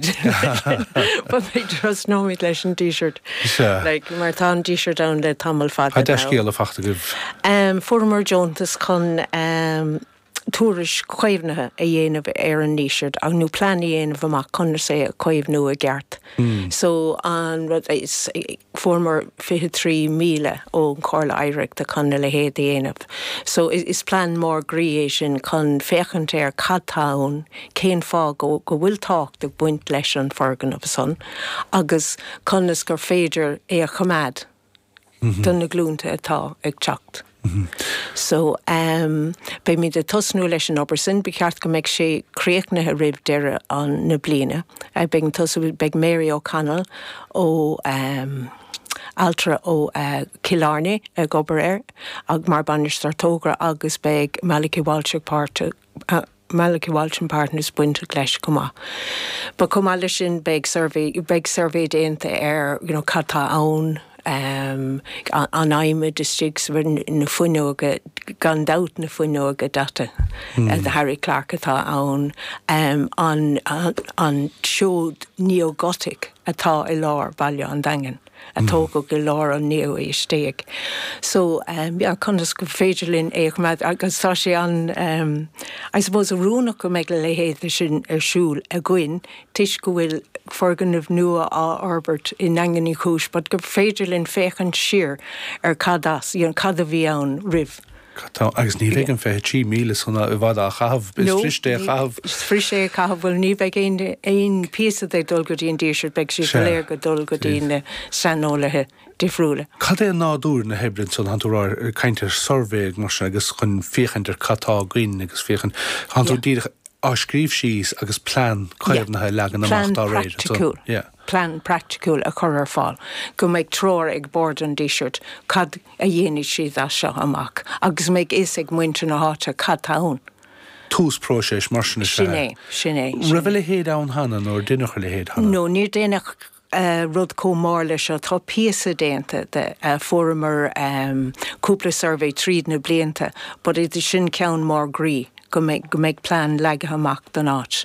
Bhuel, I suppose leis an Díseart. Sea. Like, mar tá an Díseart ann le tamall fada now. Tá dea-scéal fachta agaibh. Em, Fuaireamar deontas chun, em, tuairisc chaomhnaithe a dhéanamh ar an nDíseart ach, nó plean a dhéanamh amach conas é a chaomhnú i gceart. So, an rud is, fuaireamar 23,000 ón Chomhairle Oidhreachta chun a leithéid a dhéanamh. So, is plean mór groí é sin chun féachaint ar cad tá ann cén fáth go bhfuil tábhacht ag baint leis an foirgneamh san agus conas gur féidir é a choimeád do na glúnta atá ag teacht. So, beimid ag tosnú leis an obair sin. Ba cheart go mbeidh sé críochnaithe roimh deireadh na bliana. Beidh an tosú, beidh Mary O'Connell ó, ailtire ó Cill Airne ag obair air mar Bainisteoir Togra agus beidh Malachy Walsh ag páirteach. Malachy Walsh and Partners bainteach leis chomh maith. But chomh maith leis sin beidh suirbhé, beidh suirbhé déanta ar you know cad tá ann, an adhmad istigh sa, na fuinneoga, gan dabht na fuinneoga daite Harry Clarke atá ann, an seod Neo-Gothic atá i lár bhaile an Daingin. a tógadh i lár an naoú haois déag. So yeah conas gur féidir linn é a choimeád agus tá sé an em I suppose oiriúnach go mbeidh a leithéid de sin ar siúl againn toisc go bhfuil foirgneamh nua á fhorbairt i nDaingean Uí Chúis but gur féidir linn féachaint siar ar cad as you know cad a bhí ann roimh Tá, agus ní bheidh an 23,000 san i bhfad á chaitheamh, is fuiriste é a chaitheamh. Is fuiriste é a chaitheamh, bhuel ní bheidh aon phíosa de ag dul go dtí an Díseart, beidh siad go léir ag dul go dtí na saineolaithe difriúla. Cad é nádúr na hoibre ansan, tánn tú ag caint ar suirbhé mar sin agus chun féachaint ar cad tá againn agus féachaint, tánn tú díreach á scríobh síos agus plean caomhnaithe a leagan amach dá réir ansan? Yeah. Plean praiticiúil a chur ar fáil go mbeidh treoir ag Bord an Dísirt cad a dhéanfaidh siad as seo amach agus go mbeidh fhios ag muintir na háite cad tá ann. Tús próiseas mar sin is ea é. Sin é. Raibh a leithéid ann cheana nó ar deineadh a leithéid cheana? No, níor deineadh rud chomh mór leis seo. Tá píosa déanta de. Fuaireamar cúpla suirbhé tríd na blianta but sin ceann mór groí go mbeidh plean leagtha amach don áit.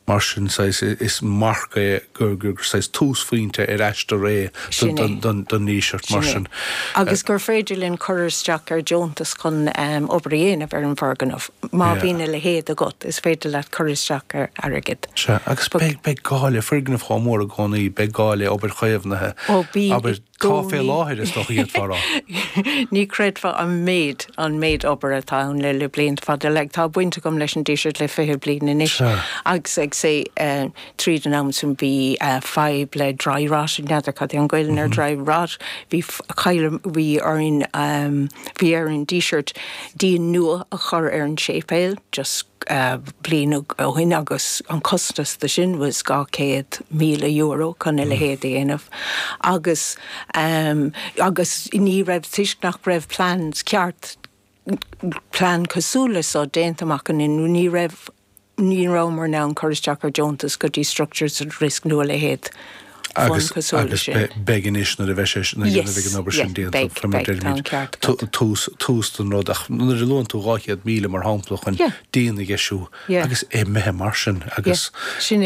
Mar sin is mar a bheadh gur túsphointe ar aistear é don Díseart mar sin. Agus gur féidir linn cur isteach ar deontas chun obair a dhéanamh ar an bhfoirgneamh. Má bhíonn a leithéid agat is féidir leat cur isteach ar airgead. Sea, agus beidh gá le foirgneamh chomh mór i gcónaí, beidh gá le obair chaomhnaithe, abair. Cá fé láthair is dócha iad fá rath? Ní chreidfeá an méid, an méid obair atá ann le, le blianta fada. Like, tá baint agam leis an Díseart le fiche bliain anois. Sea. Agus say, eh, tríd an am san bhí, eh, fadhb le dry rot, n'fheadar cad é an Gaelainn ar dry rot. Bhí f- cailleadh, bhí orainn, ehm, bhí ar an Díseart díon nua a chur ar an séipéal just, eh, bliain ó, ó shin agus an costas de sin was dhá céad míle euro chun a leithéid a dhéanamh. agus agus ní raibh toisc nach raibh plean ceart plean cosúil le so déanta amach againn ní raibh ní rabhamar in ann cur isteach ar deontais go dtí structures at risk nó a leithéid fund cosúil leis sin. Agus beidh anois nuair a bheidh sé nuair a dhéanamh ag an obair sin déanta tá muid ar muid tús tús don rud ach nuair a luann tú 200,000 mar shampla chun díon a dheisiú agus é imithe mar sin agus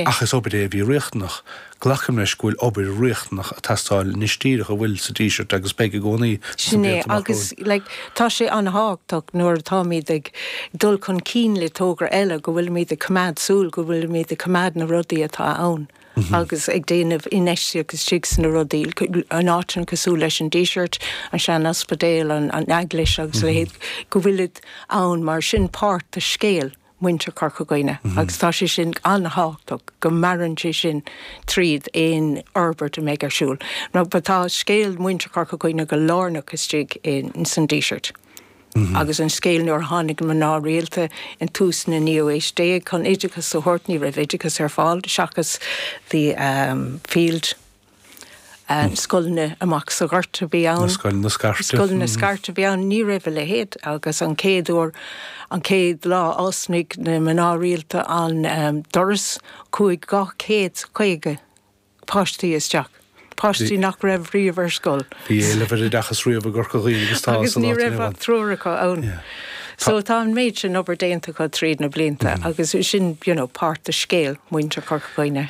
ach is obair é a bhí riachtanach Glacaim leis go bhfuil obair riachtanach ag teastáil anois díreach a bhfuil, sa Díseart agus beidh i gcónaí sna Sin é blianta amach romhainn. Agus like tá sé an-tábhachtach nuair atáimid ag dul chun cinn le tograí eile go bhfuilimid ag coimeád súil go bhfuilimid ag coimeád na rudaí atá ann agus ag déanamh infheistíocht istigh sna rudaí in áiteanna cosúil leis an Díseart, an sean-ospidéal, an eaglais agus a leithéid go bhfuilid ann mar sin páirt de scéal. muintir Chorca Dhuibhne agus tá sé sin an-tábhachtach go maireann sé sin tríd aon fhorbairt a mbeidh ar siúl. Mar tá scéal mhuintir Chorca Dhuibhne go lárnach istigh in san Díseart agus an scéal nuair a tháinig mná rialta i dtús na naoú aois déag chun oideachas a thabhairt ní raibh oideachas ar fáil seachas the field na scoileanna amach sa gort a bhí ann, na scoileanna scairte a bhí ann, ní raibh a leithéid agus an chéad uair, an chéad lá a d'oscail na mná rialta an doras, chuaigh 250 páistí isteach, páistí nach raibh riamh ar scoil. Bhí éileamh ar oideachas riamh i gCorca Dhuibhne agus tá sa lá atá inniu ann. Agus ní raibh ach triúr acu ann. So tá an méid sin obair déanta acu tríd na blianta agus sin, you know, páirt de scéal mhuintir Chorca Dhuibhne.